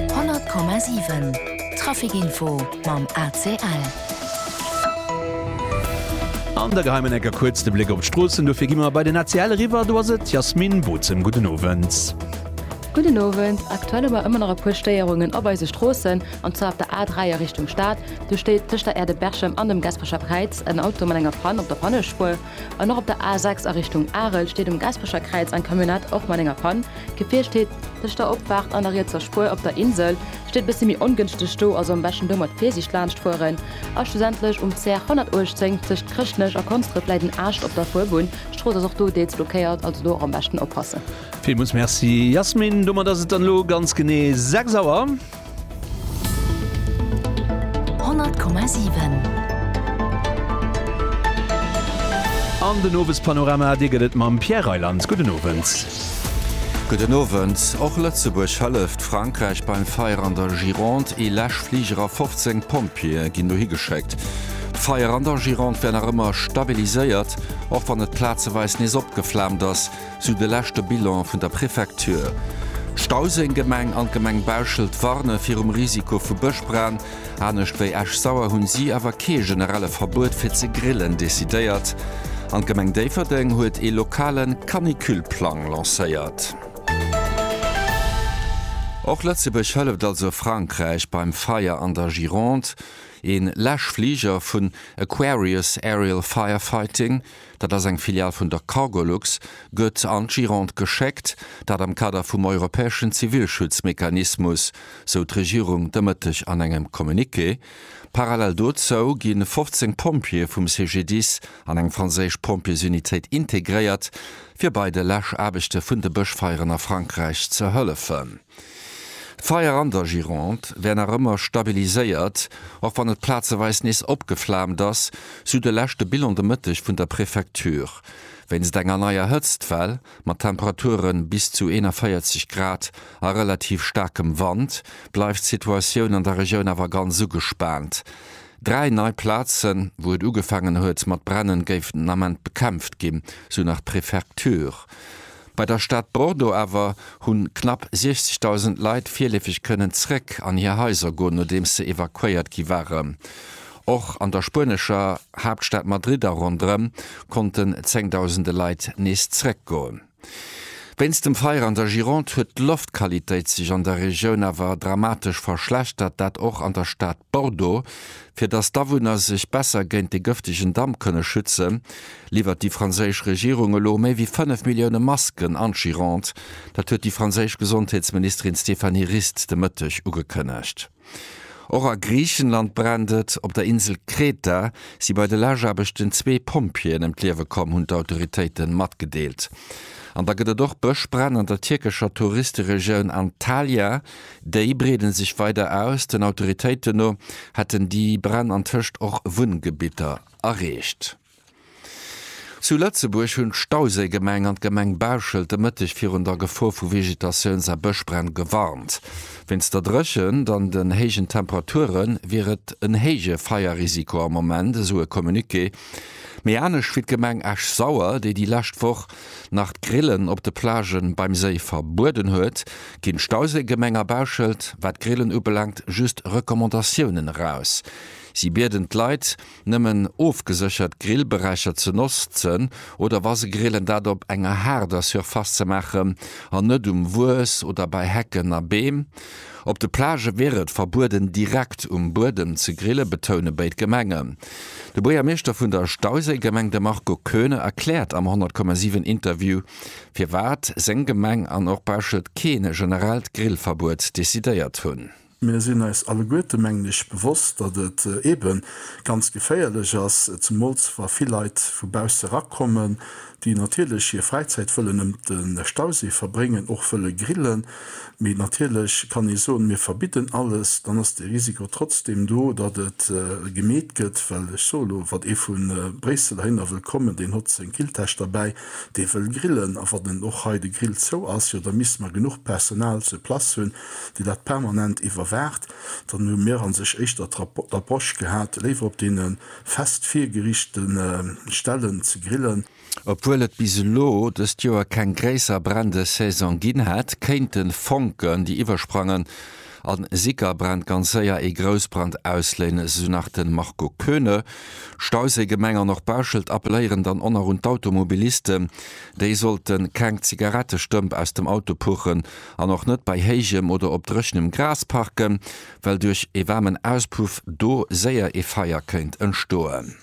100,7 Trafic Info mam ACL. An der geheimen Ecker kuerz de Bléck op d'Stroossen, dofir gi mer bei den ACL eriwwer. Do ass et d'Jasmine Bozem, gudden Owend. Gudden Owend. Aktuell hu mer ëmmer nach e puer Stéierungen op eise Stroossen, an zwar op der A3 a Richtung Stad. Do steet tëscht der Aire de Berchem an dem Gasperecher Präiz en Auto mat enger Pann op der Pannespuer. An och op der A6 a Richtung Arel steet um Gaspecher Kräiz eng Camionnette, och mat enger Pann. D'Gefier steet tëscht der Opfaart an der rietser Spuer. Op der Insel steet e bëssi méi ongënschteg do, also am beschten do mat Virsiicht laanscht fueren. A schlussendlech um CR 118 tëscht Chrëschtnech a Konsdref läit en Aascht op der Fuerbunn. D'Strooss ass och do deels blockéiert, also do och am beschten oppassen. Villmools Merci Yasmine. Domat ass et dann elo ganz genee 6 Auer. 100,7. An den Owespanorama, dee gëtt et mam Pierre Reyland. Gudden Owend. Gudden Owend. Och Lëtzebuerg hëlleft Frankräich beim Feier an der Gironde. Ee Läschfliger a 15 Pompjeeë ginn dohi geschéckt. D'Feier an der Gironde wär nach ëmmer stabiliséiert, och wann et plazeweis nees opgeflaamt ass. Sou de leschte Bilan vun der Prefecture. D'Stauséng-Gemeng an d'Gemeng Bauschelt warne virum Risiko vu Bëschbränn. Anescht wéi Esch-Sauer hunn si awer kee generelle Verbuet fir ze grillen decidéiert. An d'Gemeng Déifferdeng huet ee lokale Canicule-Plang lancéiert. Och Lëtzebuerg hëlleft also Frankräich beim Feier an der Gironde. Ee Läschfliger vun Aquarius Aerial Firefighting dat ass eng Filial vun der Cargolux, gëtt an d'Gironde geschéckt, dat am Kader vum europäeschen Zivilschutzmechanismus, sou d'Regierung de Mëtteg an engem Communiqué. Parallel dozou gi 15 Pompjeeë vum CGDIS an eng franséisch Pompjeesunitéit integréiert, fir bei de Läschaarbechte vun de Bëschfeieren a Frankräich ze hëllefen. D'Feier an der Gironde wär nach ëmmer stabiliséiert, och wann et plazeweis nees opgeflaamt ass, sou de leschte Bilan de Mëtteg vun der Prefecture. Wéinst enger neier Hëtztwell, mat Temperature bis zu 41 Grad a relativ staarkem Wand, bleift d'Situatioun an der Regioun awer ganz ugespaant. Dräi nei Plazen, wou et ugefaangen huet mat brennen, géifen den Ament bekämpft ginn, sou nach d'Prefecture. Bei der Stad Bordeaux awer hunn knapp 60.000 Leit virleefeg kënnen zréck an hir Haiser goen, nodeems se evakuéiert gi waren. Och an der spuenescher Haaptstad Madrid a ronderëm konnten zengdausende Leit nees zréck goen. Wéinst dem Feier an der Gironde huet d'Loftqualitéit sech an der Regioun awer dramatesch verschlechtert, dat och an der Stad Bordeaux. Fir datt d'Awunner sech besser géint de gëftegen Damp kënne schützen, liwwert déi franséisch Regierung elo méi wéi 5 Millioune Masken an d'Gironde. Dat huet déi franséisch Gesondheetsministerin Stéphanie Rist de Mëtteg ugekënnegt. Och a Griichenland brennt et. Op der Insel Kreta si bei de Lageaarbechten zwee Pompjeeën ëm d'Liewe komm, hunn d'Autoritéite matgedeelt. An da gëtt et och Bëschbränn an der tierkescher Touristeregioun Antalya. Déi breede sech weider aus. Den Autoritéiten no hätten déi Bränn antëscht och Wunngebitter erreecht. Zu Lëtzebuerg hunn d'Stauséigemeng an d'Gemeng Bauschelt de Mëtteg virun der Gefor vu Vegetatiouns a Bëschbränn gewarnt. Wéinst der Dréchent an den héijen Temperature wier et en héije Feierrisiko am Moment, esou e Communiqué. Mee anescht wéi d'Gemeng Esch-Sauer, déi déi lescht Woch nach d'Grillen op de Plagë beim Séi verbueden huet, ginn d'Stauséigemeng a Bauschelt, wat d'Grillen ubelaangt, just Recommandatiounen eraus. Si bieden d'Leit, Nëmmen ofgeséchert Grillberächer ze notzen oder wa se grillen, dat op enger haarder Surface ze maachen an net um Wues oder bei Hecken a Beem. Op de Plagë wier et verbueden, direkt um Buedem ze grillen, betoune béid Gemengen. De Buergermeeschter vun der Stauséigemeng, de Marco Koeune, erkläert am 100, 7 Interview, firwat seng Gemeng an och Bauschelt kee generellt Grillverbuet decidéiert hunn. Mir sinn eis alleguerte, mengen ech, bewosst, datt et eebe ganz geféierlech ass, zemools wa vill Leit vu bausse erakommen, déi natierlech hir Fräizäit wëllen ëm de Stausee verbréngen, och wëlle grillen. Mee natierlech kann ee soen, mir verbidden alles, dann ass de Risiko trotzdeem do, datt et gemeet gëtt. Well ech soe lo, wat ee vu Bréissel heihinner wëll kommen, deen hott seng Grilltäsch derbäi, dee wëll grillen, a wann och hei de Grill zou ass, jo da misste mer genuch Personal sur place hunn, déi dat permanent iwwerwaacht, dann hu mir a sech éischter d'Approche gehat, léiwer op deene fest virgeriichte Stellen ze grillen. Obwuel et bis elo dëst Joer keng gréisser Brändesaison ginn hätt, kéinte Fonken, déi iwwersprangen a Sickerbränn, ganz séier ee Groussbrand ausléinen, esou nach de Marco Koeune. Stausee, Gemeng an och Bauschelt appelléieren dann och nach un d'Automobilisten, déi sollte keng Zigarettestëmp aus dem Auto puchen, An och net bei héijem oder op dréchenem Gras parken, well duerch ee waarmen Auspuff do séier ee Feier kéint entstoen.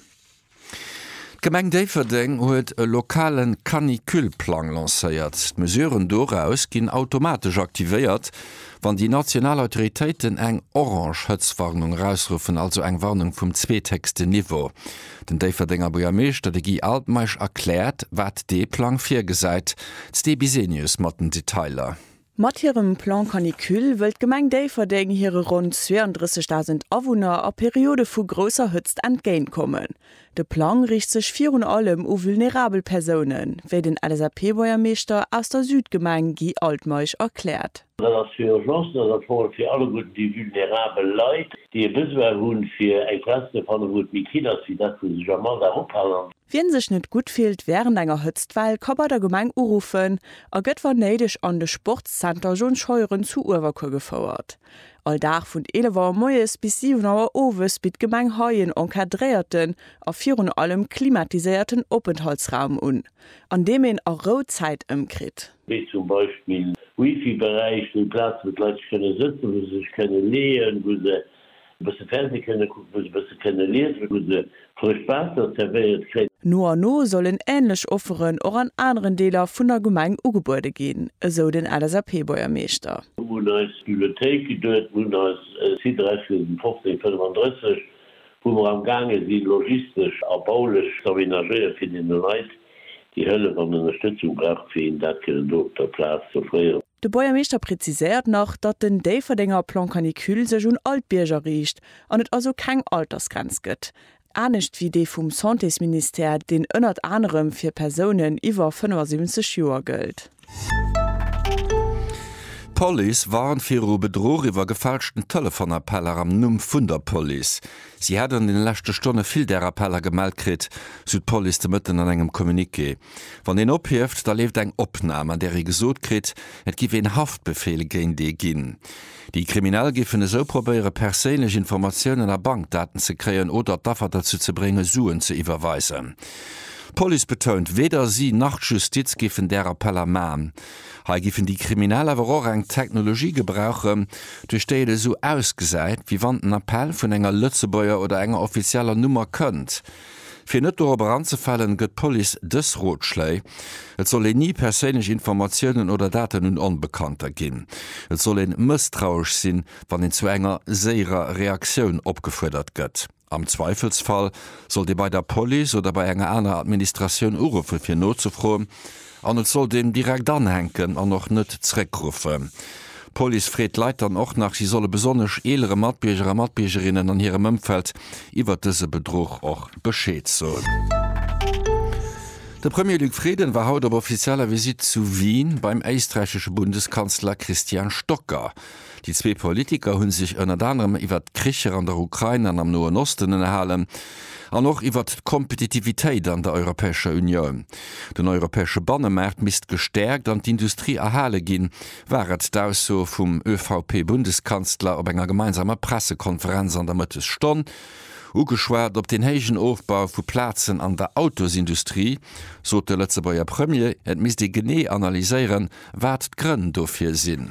D'Gemeng Déifferdeng huet e lokale Canicule-Plang lancéiert. D'Mesuren doraus ginn automatesch aktivéiert, wann déi national Autoritéiten eng orange Hëtztwarnung erausruffen, also eng Warnung vum zweethéchsten Niveau. Den Déifferdenger Buergermeeschter, de Guy Altmeisch, erkläert, wat dee Plang virgesäit. D'Sté Bisenius mat den Detailer. Mat hirem Plan Canicule wëll d'Gemeng Déifferdeng hire ronn 32.000 Awunner a Periode vu grousser Hëtzt entgéintkommen. De Plang riicht sech virun allem u vulnerabel Persounen, wéi den LSAP-Buergermeeschter aus der Südgemeng Guy Altmeisch erkläert. Dat ass fir Urgencen, dat ass am Fong fir alleguerten déi vulnerabel Leit, déi e Besoin hu fir eng Plaz ze fannen, wou et méi kill ass wéi dat, wou se sech am Alldag ophalen. Wien sech net gutt fillt wärend enger Hëtztwell, ka bei der Gemeng uruffen a gëtt wann néideg an de Sportszenter John Scheuren zu Uewerkuer gefouert. All Dag vun 11 Auer moies bis 7 Auer owes bitt d'Gemeng hei en encadréierten a virun allem klimatiséierten Openthaltsraum un, an deem een a Rou Zäit ëmkritt. wéi zum Beispill Wifi-Beräich, wéi Plazen, wou d'Leit sech kënne sëtzen, wou se sech kënne leeën, wou se e bësse Fernseh kënne kucken, wou se e bësse kënne liesen, wou se frëscht Waasser zerwéiert kréien. No an no sollen änlech Offeren och an aneren Deeler vun der Gemeng ugebuede ginn, esou den LSAP-Buergermeeschter. Mu un eis Bibliothéik geduet, mu un eis Site Räichwiesen 1535, wou mer amgaange sinn, logistesch a baulech z'aménagéieren, fir deene Leit Déi Hëllef an Ënnerstëtzung brauch fir een dat kënnen do op der Plaz ze offréieren. De Buergermeeschter preziséiert nach, datt den Déifferdenger Plan Canicule sech un all d'Bierger riicht an et also keng Altersgrenz gëtt, anescht wéi dee vum Santésministère, deen ënnert anerem fir Persounen iwwer 75 Joer gëllt. D'Police warnt viru Bedruch iwwer gefälschten Telefonappeller am Numm vun der Police. Si hätt an den leschte Stonne vill där Appeller gemellt kritt, sou d'Police de Mëtten an engem Communiqué. Wann een ophieft, da leeft eng Opnam, an där ee gesot kritt, et giff een Haftbefeel géint ee ginn. Déi Kriminell géifen esou probéiere perséinlech Informatiounen a Bankdaten ze kréien oder d'Affer derzou ze brénge Suen ze iwwerweisen. D'Police betount, weder si nach d'Justiz géifen där Appeller man. Hei géifen déi Kriminell awer och eng Technologie gebrauchen, duerch déi et esou ausgesäit, wéi wann den Appell vun enger Lëtzebuerger oder enger offizieller Nummer kënnt. Fir net dorop eranzefalen, gëtt d'Police dës Rotschléi, Et soll een ni perséinlech Informatiounen oder Daten un Onbekannter ginn. Et soll een mësstrauesch sinn, wann een zu enger séierer Reaktioun opgefuerdert gëtt. Am Zweifelsfall sollt ee bei der Police oder bei enger aner Administratioun uruffen, fir nozefroen, An et sollt een direkt anhänken an och net zréckruffen. D'Police freet d'Leit dann och nach, si solle besonnesch eelere Matbierger a Matbiergerinnen an hirem Ëmfeld iwwert dëse Bedruch och Bescheed soen. De Premier Luc Frieden war haut op offizieller Visitt zu Wien beim éisträichesche Bundeskanzler Christian Stocker. Déi zwee Politiker hu sech ënnert anerem iwwert d'Kricher an der Ukrain an am Noen Osten ënnerhalen, an och iwwert d'Kompetitivitéit an der Europäescher Unioun. Den europäesche Bannemaart misst gestäerkt an d'Industrie erhale ginn, war et d'Ausso vum ÖVP-Bundeskanzler op enger gemeinsamer Pressekonferenz an der Mëttesstonn. Ugeschwat op den héijen Ofbau vu Plazen an der Autosindustrie, sot de Lëtzebuerger Premier, et misst ee genee analyséieren, wat d'Grënn dofir sinn.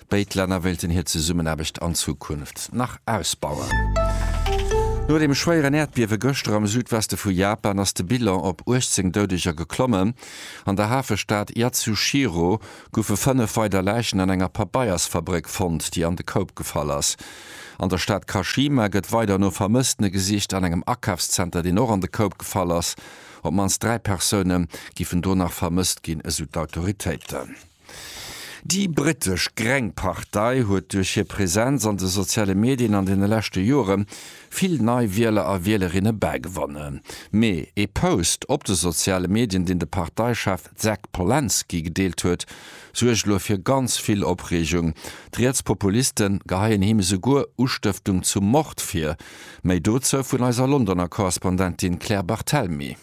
Béid Länner wéilten hir Zesummenaarbecht an Zukunft nach ausbauen. No dem schwéieren Äerdbiewe gëschter am Südweste vu Japan ass de Bilan op 18 Doudeger geklommen. An der Hafestad Yatsushiro goufe fënnef weider Läichen an enger Pabeiersfabréck fonnt, déi an de Koup gefall ass. An der Stad Kashima gëtt weider no Vermësstene gesicht. An engem Akafszenter, deen och an de Koup gefall ass, op d'mannst dräi Persoune giffen do nach vermësst ginn, esou d'Autoritéiten. Déi britesch Greng Partei huet duerch hir Präsenz an de soziale Medien an deene leschte Jore vill nei Wieler a Wielerinne bägewonnen. Mee ee Post op de soziale Medien, deen de Parteichef Jack Polansky gedeelt huet, suergt elo fir ganz vill Opreegung. D'Rietspopuliste geheien him esouguer Ustëftung zum Mord vir. Méi dozou vun eiser Londoner Korrespondentin Claire Barthelmy.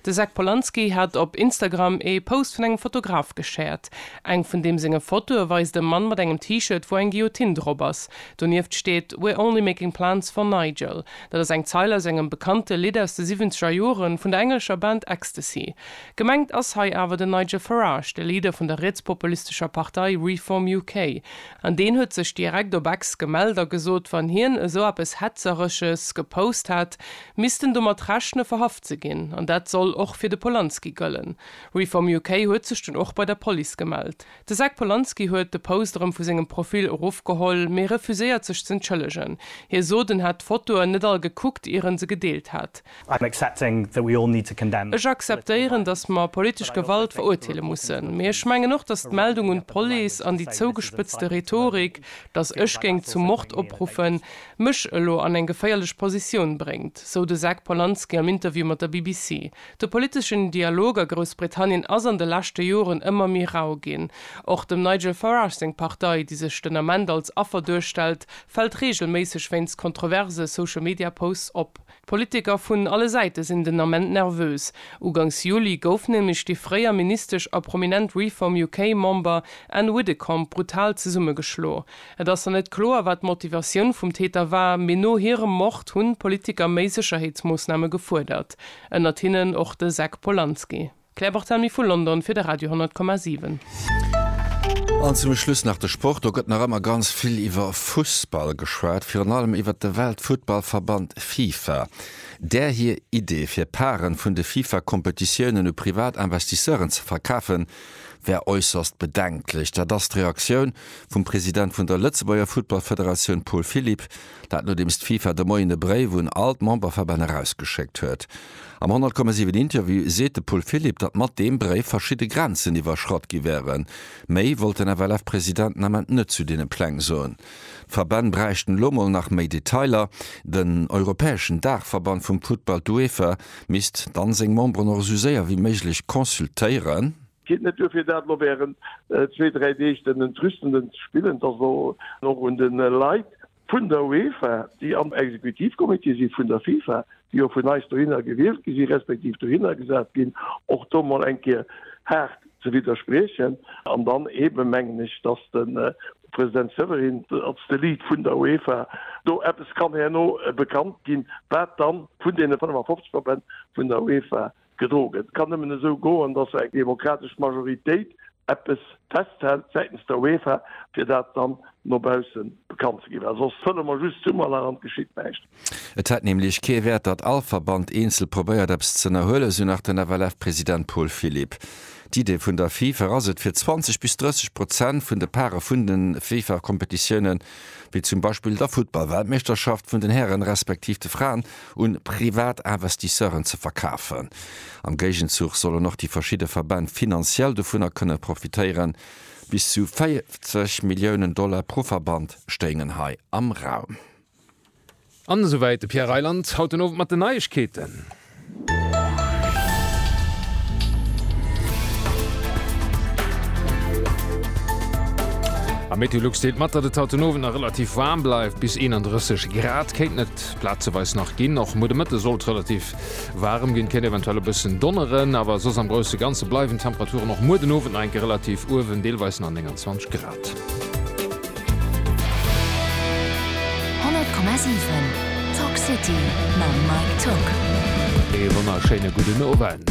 De Zach Polanski hat op Instagram ee Post vun engem Fotograf geshared. Eng vun deem senge Fotoe weist e Mann mat engem T-Shirt, wou eng Guillotine drop ass. Donieft steet We're only making plans for Nigel. Dat ass eng Zeil aus engem bekannte Lidd aus de siwwenzeger Joren vun der englescher Band Ecstasy. Gemengt ass hei awer den Nigel Farage, de Leader vun der rietspopulistescher Partei Reform UK. An deen huet sech direkt op Ex gemellt a gesot, wann hien esou eppes Hetzeresches gepost hätt, Missten domat rechne verhaft ze ginn. An dat soll och fir de Polanski gëllen. Reform UK huet sech dunn och bei der Police gemellt. De Zack Polanski huet de Post erëm vu sengem Profil erofgeholl, mee refuséiert sech z'entschëllegen. Hie sot en hätt d'Fotoen net all gekuckt ier en se gedeelt hätt. Ech akzeptéieren, datt mer politesch Gewalt verurteele mussen. Mee ech mengen och, datt d'Meldung un d'Police an déi zougespëtzte Rhetorik, datt ech géing zum Mord opruffen, Mech elo an eng geféierlech Positioun bréngt, sou de Zac Polanski am Interview mat der BBC. De politeschen Dialog a Groussbritannien ass an de leschte Joren ëmmer méi rau ginn. Och dem Nigel Farage seng Partei, déi sech den Ament als Affer duerstellt, fält reegelméisseg wéinst kontroverse Social-Media-Posts op. D'Politiker vun alle Säite sinn den Ament nervös. Ugangs Juli gouf nämlech déi fréier Ministesch a prominent Reform UK Member Ann Widdecombe brutal zesummegeschlo. Et ass nach net kloer, wat d'Motivatioun vum Täter war, mee no hirem Mord hunn d'Politiker méi Sécherheetsmoossname gefuerdert, ënnert hinnen och de Zack Polanski. Claire Barthelmy vu London fir de Radio 10,7. An zum Schluss nach de Sport. Do gëtt nach ëmmer ganz vill iwwer Fussball geschwat, virun allem iwwer de Weltfuttballverband Fifa. Där hir Idee, fir Parten vun de Fifa-Kompetitiounen u privat Investisseuren ze verkafen, wär äusserst bedenklech. Dat ass d'Reaktioun vum President vun der Lëtzebuerger Futtballfederatioun Paul Philipp Dat nodeems d'FIFA de Moien e Bréif un all d'Memberverbänn erausgeschéckt huet. Am 100,7 Interview seet de Paul Philipp, datt mat deem Bréif verschidde Grenzen iwwerschratt gi wären. Méi wollt den FLF-President den Ament net zu deene Pläng soen. D'Verbänn bräichten elo mol nach méi Detailer. Den europäeschen Daachverband vum Futtball, d'UEFA, misst dann seng Memberen och esou séier wéi méiglech consultéieren. Geet net duer fir dat elo während zwee, dräi Deeg den Entrüstenden ze spillen? Et ass elo och un de Leit vun der UEFA, déi am Exekutivcomité si vun der FIFA, déi jo vun eis dohinner gewielt gi si respektiv dohinner gesat ginn, och do mol eng Kéier haart ze widderspriechen. An dann eebe mengen ech, datt de President Severin als de Lead vun der UEFA do eppes kann herno bekannt ginn, wat dann vun deene 55 Verbänn vun der UEFA Gedrogen. Et kann nëmmen esou goen, datt eng demokratesch Majoritéit eppes festhält säitens der UEFA, fir dat dann no baussen bekannt ze ginn. Well soss fëlle mer just Summerlach an et geschitt näischt. Et hätt nämlech kee Wäert, datt all Verband eenzel probéiert eppes z'ënnerhuelen, esou nach den FLF-President Paul Philipp. D'Idee vun der FIFA ass et, fir 20 bis 30 Prozent vun de Pare vun de FIFA-Kompetitiounen, wéi zum Beispill der Futtball-Weltmeeschterschaft vun den Hären respektiv de Fraen, un privat Investisseuren ze verkafen. Am Géigenzuch sollen och déi verschidde Verbänn finanziell dovunner kënne profitéieren. Bis zu 40 Milliounen Dollar pro Verband stéingen hei am Raum. An esouwäit de Pierre Reyland haut den Owend mat den Neiegkeeten. A Meteolux deelt mat, datt et haut den Owend nach relativ waarm bleift, bis 31 Grad kéinten et. wäert plazeweis nach ginn. Och muer de Mëtte sollt relativ waarem ginn, kéint eventuell e bëssen donneren, awer soss am grousse Ganze bleiwen d'Temperaturen och muer den Owend nach eng Kéier relativ uewen, deelweis nach 29 Grad. 100,7 Tock City mam Mike Tock. Ee wonnerschéine gudden Owend.